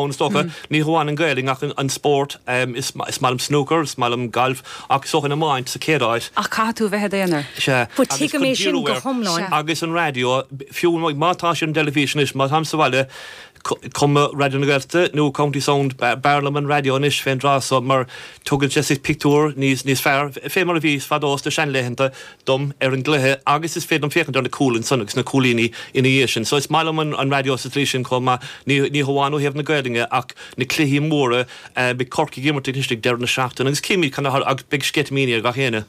Ó, is dócha. Ní hamháin an Ghaelainn ach an spórt. Is maith liom snúcar, is maith liom galf ach is dócha an iomáint sa chéad áit. Ach caithfidh tú a bheith i d'aonar. Is ea. Bhuel, Agus tuigim chun é sin díriú air go hiomlán. Sea. Agus an raidió, fiú má tá sé ar an dteilifís anois, má táim sa bhaile, cuma Raidió na Gaeltachta nó County Sound, b'fhearr liom an raidió anois fén dtráth so mar tugann sé pictiúr níos fearr, fé mar a bhí fadó sna seanlaethanta dom ar an gcluiche agus is féidir liom féachaint ar na cúil ansan agus na cúilíní ina dhiaidh sin so is maith liom an raidió sa tslí sin chomh maith, ní hamháin ó thaobh na Gaelainne ach na cluichí móra, beidh Corcaigh ag imirt anois ag deireadh na seachtaine agus cífimid cad a tharlóidh agus beidh sceitimíní ar gach éinne.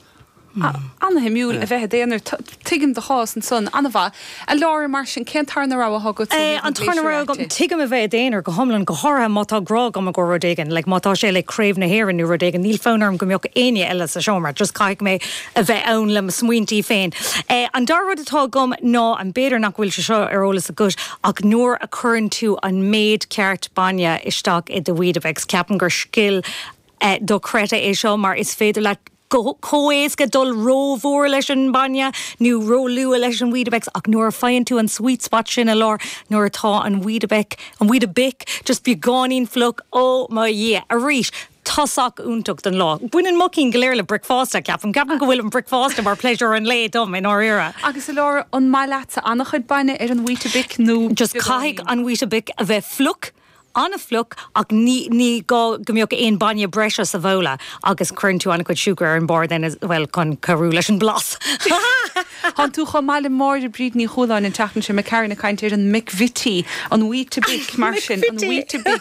Ana-shuimiúil a bheith i d'aonar. Tuigim do chás ansan, ana-mhaith. A Laura, mar sin, cén tarna rogha a thugas tú? Bhí an tarna rogha agam, tuigim a bheith i d'aonar, go hiomlán, go háirithe má tá grá agat i gcomhair rud éigin, like má tá sé like Craobh na hÉireann nó rud éigin, níl fonn orm go mbeadh éinne eile sa seomra, just caithfidh mé a bheith ann le mo smaointí féin. An dara rud atá agam ná, and b'fhéidir nach bhfuil sé seo ar eolas agat, ach nuair a cuireann tú an méid ceart bainne isteach i do weetabix, ceapaim gur scil dochreidte é seo mar is féidir leat chomh héasca dul ró-mhór leis an mbainne nó ró-luath leis an Weetabix ach nuair a faigheann tú an sweet spot sin i lár nuair atá an Weetabix, an Weetabix just beagáinín fliuch, oh mo dhia! Arís, tosach iontach don lá. Baineann mo chinn go léir le bricfeasta, ceapaim. Ceapaim go bhfuil an bhricfeasta mar pléisiúr an lae dom i ndáiríre. Agus a Laura, an maith leatsa an-chuid bainne ar an Weetabix nó beagáinín? Just caithfidh an Weetabix a bheith fliuch. An-fhliuch, ach ní ní gá go mbeadh aon bhainne breise sa bhabhla agus cuireann tú an-chuid siúcra ar an mbarr den, bhuel, chun cabhrú leis an blas. Ha ha ha ha! Tháinig tú chomh maith le Máire Bríd Ní Chualáin an tseachtain seo caite ag caint ar an McVittie, an Weetabix, mar sin, an Weetabix.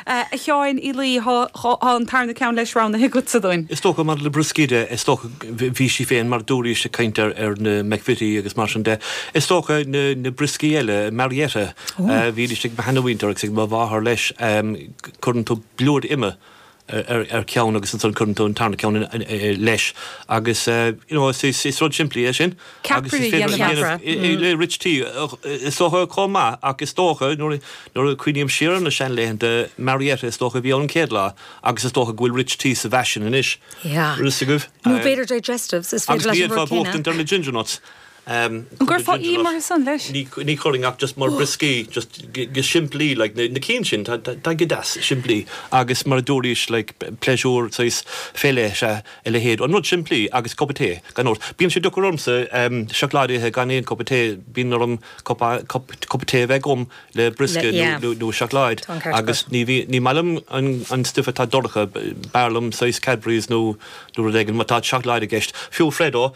A Sheáin Uí Laoi, tá an tarna ceann leis roghnaithe agatsa dúinn. Is dócha, maidir le brioscaí de, is dócha, bhí sí féin, mar a dúraís, ag caint ar na McVittie agus mar sin de. Is dócha na brioscaí eile, Marietta. Bhídís ag mo sheanmhuintir agus ag mo mháthair leis. Cuireann tú blúire ime ar cheann agus ansan cuireann tú an tarna ceann leis agus you know is rud simplí é sin agus is féidir a dhéanamh le rich tea is dócha chomh maith ach is dócha nuair a cuimhním siar ar na seanlaethanta Marietta is dócha a bhí ann an chéad lá agus is dócha go bhfuil rich tea sa bhfaisean anois. Nó b'fhéidir digestives is féidir leis an rud céanna. Agus níl aon bhuachtaint ar na ginger nuts. An gcuirfeá im orthu san, leis? Ní chuirfinn, ach just mar brioscaí, just go simplí, like, na cinn sin, tá go deas simplí agus mar a dúraís, like, pléisiúr, saghas féasta is ea a leithéid, an rud simplí agus cupa tae, gan dabht. Bíonn sé deacair ormsa, em, seacláid a ithe gan aon cupa tae, bíonn orm cup, cup, cup tae a bheith agam le briosca nó, nó seacláid agus ní bhíonn, ní maith liom an, an stuif atá dorcha, b'fhearr liom saghas Cadbury's nó, nó rud éigin, má tá seacláid i gceist. Fiú Freddo.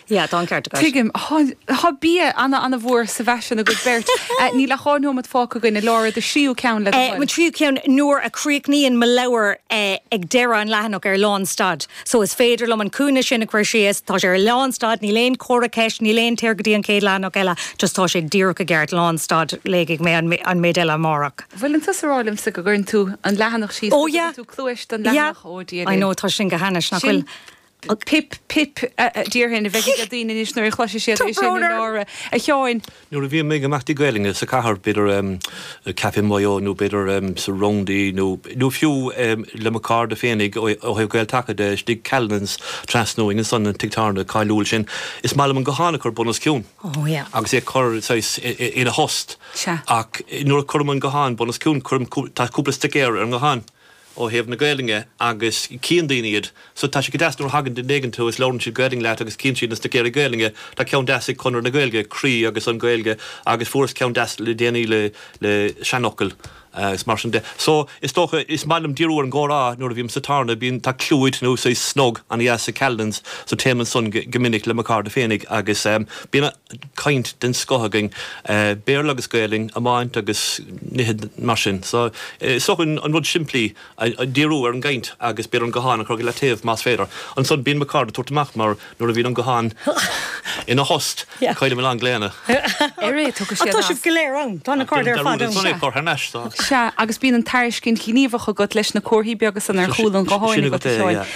Yeah, tá an ceart agat. Tuigim. Tá bia an-an-mhór sa bhfaisean agaibh beirt. Níl ach dhá nóiméad fágtha againn, a Lára, do thríú ceann, le do thoil. Mo thríú ceann, nuair a chríochnaíonn mo leabhar ag deireadh an leathanach ar lánstad. So is féidir liom an cúinne sin a chur síos, tá sé ar lánstad, níl aon chomhartha ceist, níl aon téir go dtí an chéad leathanach eile, just tá sé díreach i gceart, lánstad, léifidh mé an méid eile amárach. Bhfuil tusa ag rá liomsa go gcuireann tú an leathanach síos, go dtugann tú cluais don leathanach? Oh yeah, I know, tá sin go hainnis, nach bhfuil? Pip, pip, a déarfainn, a bheidh ag daoine anois nuair a chloisfidh siad é sin a Lára. A Sheáin. Nuair a bhím ag imeachtaí Gaolainne sa cathair, b'fhéidir i Café Myo nó b'fhéidir sa Roundy nó fiú le mo cairde féinig ó thaobh Gael Taca de istigh, Callanan's tráthnóna ansan an tigh tábhairne cáiliúil sin, is maith liom an guthán a chur bun os cionn agus é a chur saghas ina thost ach nuair a cuirim an guthán bun os cionn, cuirim, tá cúpla stuicéir ar an nguthán. ó thaobh na Gaolainne agus cíonn daoine iad. So tá sé go deas nuair a thagann duine éigin chughat is labhrann siad Gaolainn leat agus cíonn siad na stuicéirí Gaolainne. Tá ceann deas ag Conradh na Gaeilge, Croí agus an Ghaeilge agus fuaireas ceann deas le déanaí le le seanfhocail agus mar sin de. So is dócha, is maith liom díriú ar an gcomhrá nuair a bhím sa tábhairne, bíonn, tá clúid nó saghas snug ana dheas ag Callanan's so téim ansan go minic le mo cairde féinig agus bíonn, caint den scoth againn, Béarla agus Gaelainn, iomáint agus nithe mar sin. So, is dócha an rud simplí, díriú ar an gcaint agus b'fhéidir an guthán a chur i leataobh más féidir. Ansan bíonn mo chairde ag tabhairt amach mar nuair a bhíonn an guthán ina thost, caillim a lán glaonna. Arae tugadh siad as. Tá sibh go léir ann, tá na cairde ar fad ann. Sea. Cur thar n-ais. Sea, agus bíonn an tairiscint ghníomhach agat leis na comharthaí beaga san ar chúl an ghutháin agat a Sheáin.